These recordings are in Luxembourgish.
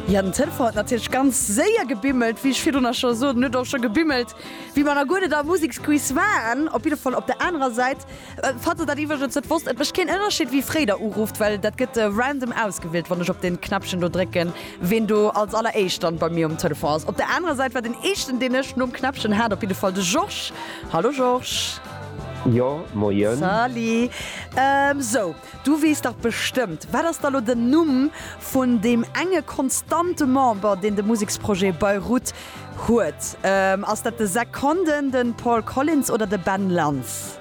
Jo, den Telefon huet natierlech ganz séier gebimmelt, wéi ech virdrun nach scho sot. En huet och scho gebimmelt, wéi mer nach guer net am Museksquiz waren. Op jidde Fall op der anerer Säit, falls der dat iwwregens net wosst, et mécht keen Ënnerschied, wéi fréi der urufft, well dat gëtt random ausgewielt, wann ech op dee Knäppchen do drécken, ween do als alleréischt dann bei mir um Telefon ass. Op der anerer Säit war den éischten, deen ech nom Knäppchen hat, op jidde Fall de Georges. Hallo Georges. Jo, moien. Salut. Sou. Du weess dach bestëmmt, wat ass da lo den Numm vun deem enge konstante Member, deen de Museksprojet Beirut huet? Ass dat de Zack Condon, de Paul Collins oder de Ben Lantz?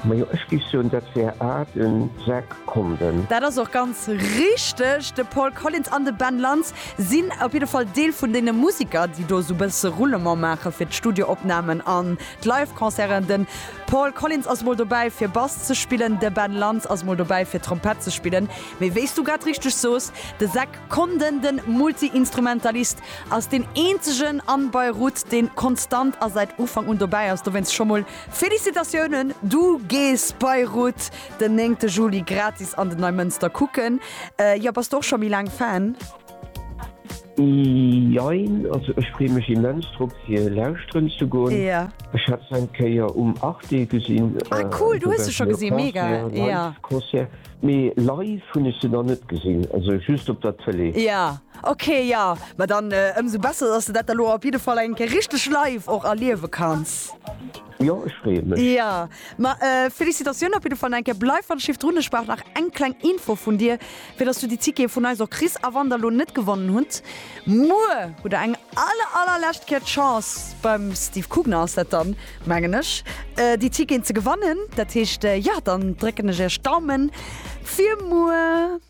Majo, ech géif soen, dat wär A, de Zack Condon. Dat ass och ganz richteg. De Paul Collins an de Ben Lantz sinn op jidde Fall Deel vun deene Museker, déi do esou e bësse Roulement maache fir d'Studioopnamen an d'Live-Concerten. Paul Collins ass mol dobäi fir Bass ze spillen, de Ben Lantz ass mol dobäi fir Trompett ze spillen, mee wéi s du grad richteg soos, de Zach Condon, de Multiinstrumentalist, ass deen eenzegen an Beirut deen konstant a säit Ufank un dobäi ass. Dowéinst scho mol Félicitatiounen, du gees Beirut den 9 Juli gratis an den Neimënster kucken. Jo, bass du och scho méi laang Fan? Jein, also ech free mech immens drop fir lauschteren ze goen. Ech hat se eng Kéier um Arte gesinn, Concert, mee live hunn ech se nach net gesinn, also just op der Tëlee. Jo ok, jo ma dann ëmsou besser, dass de dat da lo op jiddefall eng Kéier richteg live och erliewe kanns. Jo ech freeë mech. Jo ma Felicitatioun op jiddefall enke. Bleif wann ech jiff drun, ech brauch nach eng kleng Info vun dir fir dass du déi Tickete vun eis och kriss a wann der lo net gewonnen hutt muer hutt der eng aller aller lescht Kéier d'Chance beim Steve Kugner ass dat dann mengen ech déi Ticketen ze gewannen. Dat heescht jo dann drécken ech iech d'Daumen fir muer.